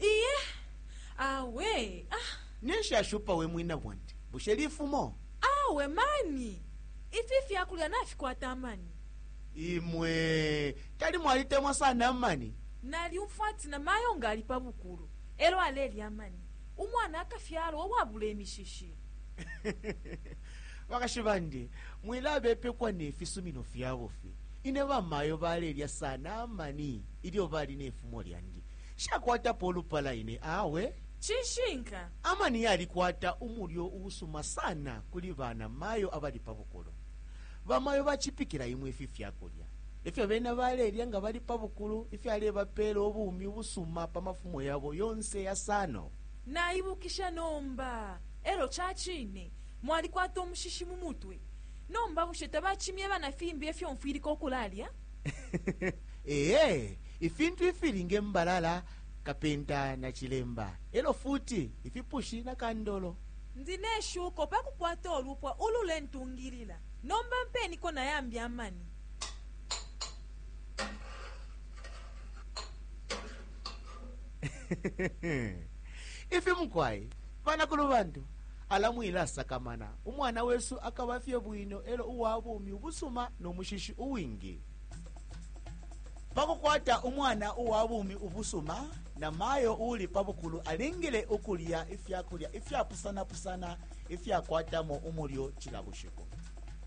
iye awe ah, neshashupa we mwina bwandi bushe lifumo awe mani ifi fyakulya nafikwata amani imwe tali mwalitemwa sana amani nalyumfwa ati na mayo nga ali pa bukulu elo alelya amani umwana akafyalwa uwabula imishishi bakashi bandi mwilabepekwa nefisumino fyabo fi Ine bamayo balelya sana amani ilyo bali ne fumo lyandi. Nshakwatapo ulupala ine awe. Cishinka. Amani yalikwata umulyo uusuma sana kuli bana mayo abali pa bukulu. Bamayo bacipikila imwe ifi fyakulya. Efyo bena balelya nga bali pa bukulu ifyalebapela ubumi ubusuma pa mafumo yabo yonse yasano. Naibukisha nomba. Elo cacine mwalikwata umushishi mu mutwe. Nomba bushe tabacimye bana fimbi efyo mfwilika ukulalya? Ee, ifintu ifili nge mbalala, kapenta na cilemba, e lyo futi ifipushi na kandolo. Ndi ne shuko pa kukwata ulupwa ululentungilila. Nomba mpeeniko na yambi amani. Ifi mukwai, banakulubantu. Ala mwilasakamana, umwana wesu akaba fye bwino e lyo uwa bumi ubusuma no mushishi uwingi. Pa kukwata umwana uwa bumi ubusuma, namayo uuli pa bukulu alingile ukulya ifya kulya ifyapusanapusana ifyakwatamo umulyo cila bushiku.